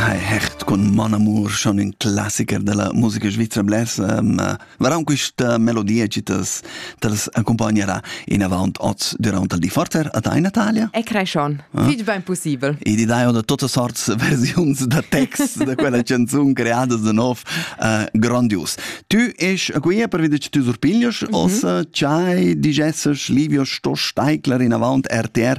Hai hecht con mon amur schon ün classiker della musica svizra blers um, varon quista melodia chi t'as t'as accompagnerà in avant oz durant il di forter a tai Natalia? E creschon, ah? fich ben possibel. E ti dai da totas sorts versiuns da text da quella canzun creada da nov uh, grandius. Tu es qui per veder che tu surpiglias, mm -hmm. os uh, chai digesses livio sto steigler in avant RTR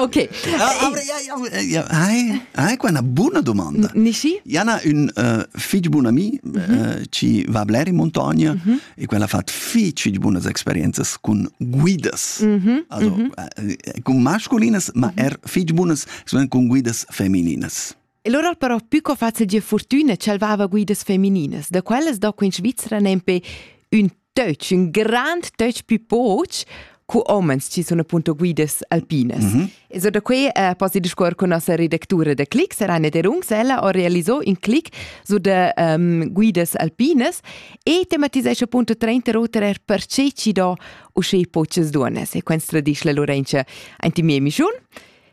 Ok. Hai hai qua una buona domanda. Nischi? Jana un uh, fich bun ami uh, ci va bler in montagna e quella ha fatto fich buonas experiences con guidas. Also, uh, con masculines, ma er fich buonas con guidas femininas. E lura al però pü co facil gie fortüna chalvava guidas femininas, da quellas do in Svizra nempe ün töch, un grand töch più poch cu homens ci sono appunto guidas alpinas. Mm -hmm. E so da qui eh, posi discuor con nossa redactura da Click, Serane Derungs, ella ha realizzo in click su de um, guidas alpinas e tematisesce appunto 30 roter per ce ci do usce poches duones e quens tradisce la Lorenza anti miei mischun.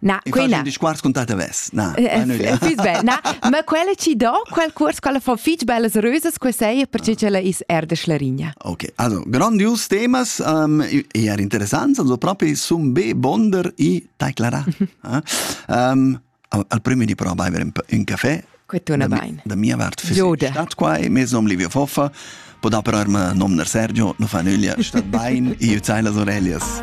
Na, quella. Dici quarts con tata ves. Na. Na, ma quella ci do quel curs quella fa fich bellas rösas que sei perché che la is er de Schlarigna. OK. Also, grandios temas um, eher interessants, also proprio sun be bonder i teclara. um, al primo di prova a bere un caffè. Questo una bain. Da mia parte fisica statt qua e mezzo om Livio Foffa può da per nom Sergio, non fa nulla, stat bain, io zeile las orellas.